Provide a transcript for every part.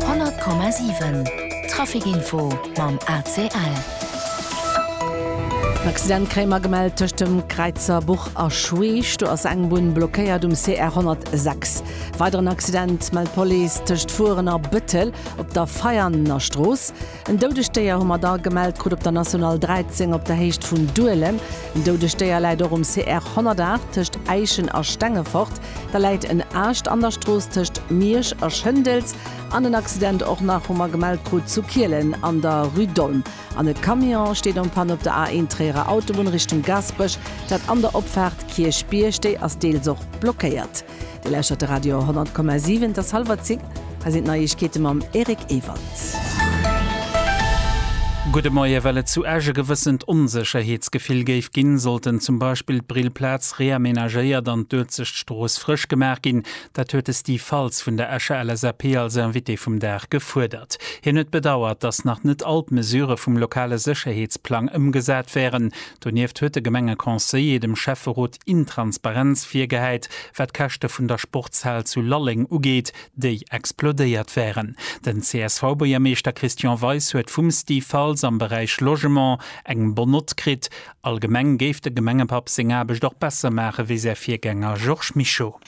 100,7 Trafic Info mam ACL. En Accident kréie mer gemellt tëscht dem Kräizerbuch a Schweech. Do ass eng Bunn blockéiert um CR 106. Weideren Accident mellt d'Police tëscht Furen a Bëttel op der Veianenerstrooss. En doudegt Déier hu mer da gemellt krut op der National 13 op der Héicht vun Duelem. En doudegt Déier läit och um CR 108 tëscht Äischen a Stengefort. Da läit en Aascht an der Strooss tëscht Miersch a Schëndels. An en Accident och nach, hu mer gemellt krut, zu Kielen an der Rue d'Olm. An e Camion steet en panne op der A1 Tréierer Autobunn Richtung Gaasperech. Dat an der Opfaart Kierchbierg, déi ass deels och blockéiert. Dir lauschtert de Radio 10,7, et ass hallwer 10, hei sinn d'Neiegkeete mam Eric Ewald. Gudde Moie, Well et zu Esch e gewëssent Onsécherheetsgefill géif ginn, sollten zum Beispill d'Brillplaz reamenagéiert an d'Uelzecht Strooss frësch gemaach ginn. Dat huet de Steve Faltz vun der Escher LSAP als Invité vum Dag gefuerdert. Hien huet bedauert, datt nach net all d'Mesurë vum lokale Sécherheetsplang ëmgesat wären. Donieft huet de Gemengeconseiller dem Schäfferot Intransparenz virgehäit, wat d'Käschte vun der Sportshal zu Lalleng ugeet, déi explodéiert wären. Den CSV-Buergermeeschter Christian Weis huet vum Steve Faltz am Beräich Logement eng Bonne Note kritt. Allgemeng géif de Gemengepapp seng Aarbecht och besser maachen, wéi säi Virgänger Georges Mischo.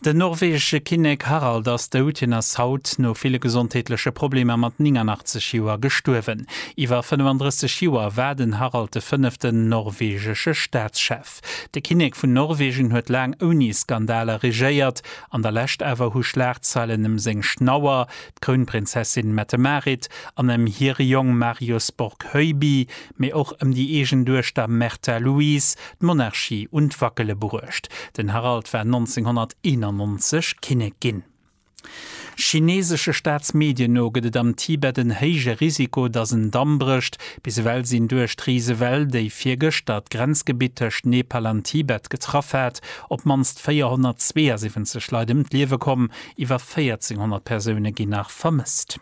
Den norwegesche Kinnek Harald ass dout. Hien ass haut no ville gesondheetleche Problemer mat 89 Joer gestuerwen. Iwwer 35 Joer war den Harald de fënneften norwegesche Staatschef. De Kinnek vun Norwegen huet laang ouni Skandaler regéiert. An der Lescht awer hu Schlagzeilen ëm seng Schnauer, d'Krounprinzessin Mette-Marit, an ëm hire Jong Marius Borg Höjby, mee och ëm déi eegen Duechter Märtha Louise d'Monarchie un d'Wackele bruecht. Den Harald war 1991 Kinnek ginn. Chineesesche Staatsmedien no gëtt et am Tibet en héije Risiko, datt en Damm brécht. Bis ewell sinn duerch d'Risewell, déi virgëschter d'Grenzgebitt tëscht Nepal an Tibet getraff hat, op d'mannst 472 Leit ëm d'Liewe komm. Iwwer 1.400 Persoune ginn nach vermësst.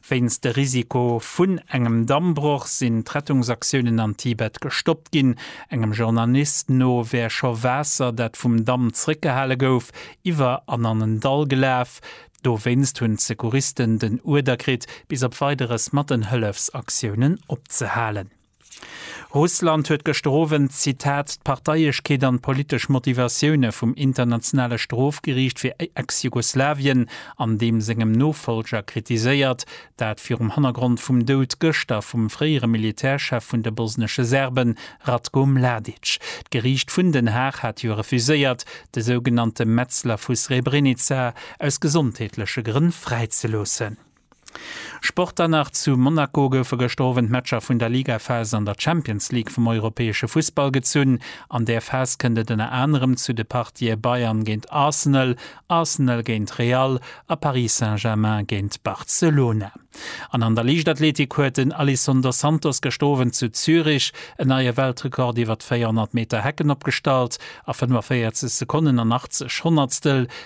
Wéinst de Risiko vun engem Dammbroch sinn d'Rettungsaktiounen an Tibet gestoppt ginn. Engem Journalist no wär scho Waasser, dat vum Damm zeréckgehale gouf, iwwer an an en Dall gelaf. Dowéinst hunn d'Secouristen den Uerder kritt, bis op Weideres mat den Hëllefsaktiounen opzehalen. Russland huet gëschter Owend, Zitat, d'Parteiechkeet an d'politesch Motivatioune vum Internationale Strofgeriicht fir Ex-Jugoslawien an deem sengem Nofollger kritiséiert. Dat virum Hannergrond vum Doud gëschter vum fréiere Militärchef vun de bosnesche Serben, Ratko Mladic. D'Geriicht vun Den Haag hat jo refuséiert, de sougenannte Metzler vu Srebrenica aus gesondheetleche Grënn fräizeloossen. Sport dann nach, Zu Monaco goufe gëschter Owend d'Matcher vun der Ligaphas an der Champions League vum europäesche Fussball gezunn. An där Phas kënnt et ënner anerem zu de Partië Bayern géint Arsenal, Arsenal géint Real a Paris Saint-Germain géint Barcelona. An an der Liichtathletik huet den Alisson dos Santos gëschter Owend zu Zürich en neie Weltrekord iwwer d'Véierhonnert Meter Hecken opgestallt. A 45 Sekonnen an 80 Honnertstel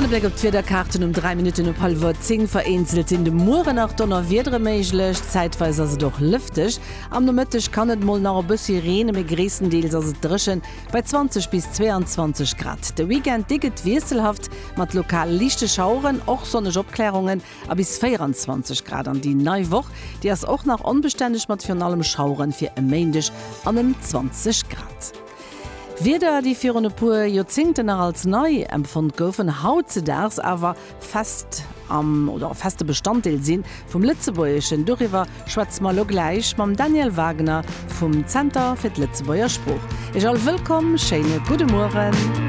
An e Bléck op d'Wiederkaarten um 3 Minutten op hallwer 10. Vereenzelt sinn de Muere nach Donnerwiedere méiglech, zäitweis ass et och lëfteg. Am Nomëtteg kann et mol nach e bëssi reene, mee gréisstendeels ass et dréchen, bei 20 bis 22 Grad. De Weekend, dee gëtt wiesselhaft, mat lokal liichte Schaueren, och sonneg Opklärungen a bis 24 Grad. An déi nei Woch, déi ass och nach onbestänneg, mat virun allem Schauere fir e Méindeg an ëm 20 Grad. Wierder, déi virun e puer Joerzéngten nach als nei empfonnt goufen, hautzedaags awer fest am oder feste Bestanddeel si vum Lëtzebuergeschen. Doriwwer schwätze mer elo gläich mam Daniel Wagner vum Zenter fir d'Lëtzebuerger Sprooch. Iech all wëllkomm, schéine gudde Mueren.